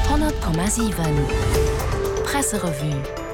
100,7 Presserevue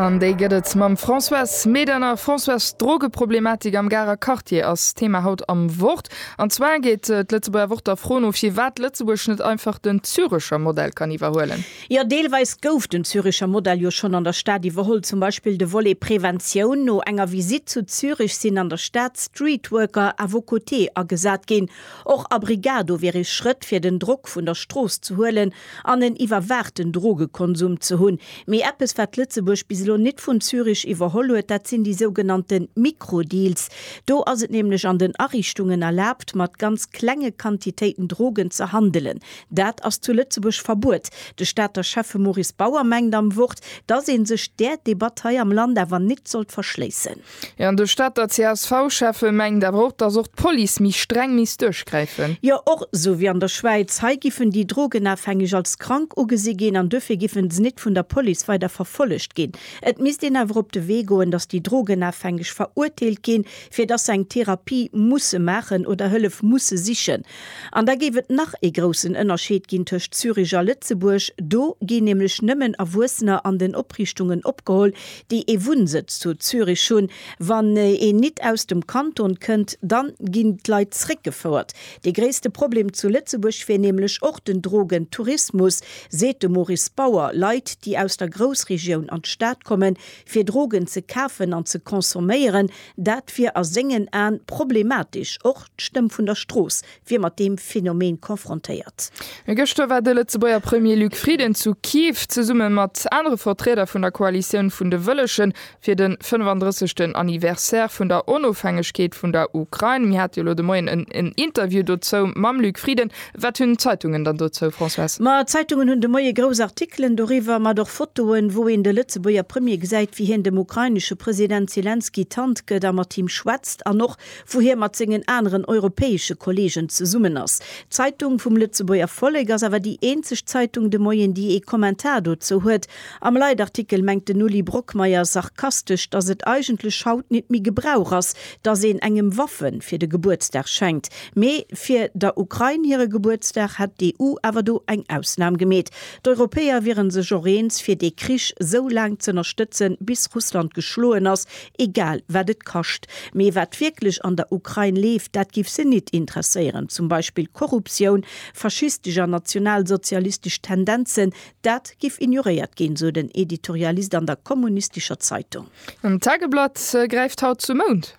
An déi gëtt et mam Françoise Medernach. Françoise, D'Drogeproblematik am Garer Quartier ass Thema haut am Wort. An zwar geet d'Lëtzebuerger Wort der Fro no, firwat Lëtzebuerg net einfach den Zürecher Modell kann iwwerhuelen. Jo, deelweis gouf den Zürecher Modell jo schonn an der Stad iwwerholl. Zum Beispill de Volet Preventioun, No enger Visitt zu Zürich sinn an der Stad Streetworker à vos côtés agesat ginn, Och Abrigado wier ee Schrëtt fir den Drock vun der Strooss ze huelen an en iwwerwaachten Drogekonsum ze hunn. Mee eppes wat Lëtzebuerg bis elo nit vun Zürich iwwerholl huet, dat sinn déi sougenannte Mikrodeals. Do ass et nämlech an den Ariichtungen erlaabt mat ganz klenge Quantitéiten Drogen ze handelen. Dat ass zu Lëtzebuerg verbuet. De Stater Schäffe Maurice Bauer mengt am Wort, datt ee sech där Debatt hei am Land awer nit sollt verschléissen. Jo, an de Stater CSV-Schäffe mengt awer och, datt och d'Police méi streng misst duerchgräifen. Jo, och esou wéi an der Schwäiz. Hei giffen déi Drogenafhängeg als krank ugesi ginn an duerfir giffen se nit vun der Police weider verfollegt ginn. Et misst een awer op de Wee goen, datt déi Drogenafhängeg verurteelt ginn, fir datt se eng Therapie musse maachen oder Hëllef musse sichen. An da géif et nach ee groussen Ënnerscheed ginn tëscht Zürich a Lëtzebuerg. Do ginn nämlech nëmmen Erwuessener an den Opriichtungen opgeholl, déi ee Wunnsëtz zu Zürich hunn, wann een nit aus dem Kanton kënnt, dann ginn d'Leit zréckgefouert. Dee gréisste Problem zu Lëtzebuerg wier nämlech och den Drogentourismus, seet de Maurice Bauer. Leit, déi aus der Groussregioun an d'Stad kommen, fir Drogen ze kafen an ze consomméieren, dat wier a sengen Aen problematesch. Och d'Stëmm vun der Strooss wier mat deem Phenomen confrontéiert. Gëschter war de Lëtzebuerger Premier Luc Frieden zu Kiew zesumme mat anere Vertrieder vun der Koalitioun vun de Wëllegen fir de 35. Anniversaire vun der Onofhängegkeet vun der Ukrain. Mir hate jo elo de Moien en Interview dozou mam Luc Frieden. Wat hunn d'Zeitungen dann dozou, Françoise? Ma d'Zeitungen hunn de Moie grouss Artikelen doriwwer, mat och Fotoen, wou een de Lëtzebuerger Premier gesäit, wéi hien dem ukrainesche President Selenskyj d'Hand gëtt a mat him schwätzt an och wou hie mat sengen aneren europäesche Kolleegen zesummen ass. D'Zeitung vum Lëtzebuerger Vollek ass awer déi eenzeg Zeitung de Moien, déi ee Kommentar dozou huet. Am Leitartikel mengt den Uli Brockmeyer sarkastesch, datt et eigentlech haut nit méi Gebrauch ass, datt een engem Waffe fir de Gebuertsdag schenkt. Mee fir der Ukrain hire Gebuertsdag hätt d'EU awer do eng Ausnam gemeet. D'Europäer wiere sech och eens, fir dee Krich sou laang z'ënnerstëtzen, bis Russland geschloen ass, Egal wat et kascht. Mee wat wierklech an der Ukrain leeft, dat giff se nit interesséieren. Zum Beispill Korruptioun, faschistesch an nationalsozialistesch Tendenzen, dat giff ignoréiert ginn, sou den Editorialist an der kommunistescher Zeitung. An d'Tageblatt gräift haut zum Mound.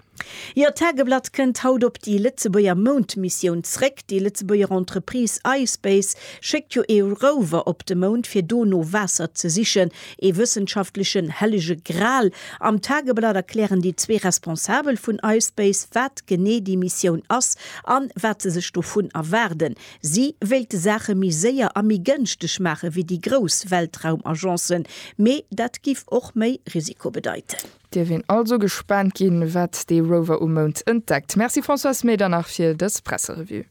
Jo, d'Tageblatt kënnt haut op déi Lëtzebuerger Moundmissioun zréck. Déi Lëtzebuerger Entreprise iSpace schéckt jo ee Rover op de Mound, fir do no Waasser ze sichen. Ee wëssenschaftlechen hellege Gral. Am Tageblatt erklären déi zwee Responsabel vun ispace, wat genee déi Missioun ass an wat se sech dovun erwaarden. Si wéilte Saache méi séier a méi gënschteg maache wéi déi grouss Weltraumagencen, mee dat giff och méi Risiko bedeiten. Dierf een also gespaant ginn, wat dee Rover um Mound entdeckt. Merci Françoise, mee dann nach fir dës Presserevue.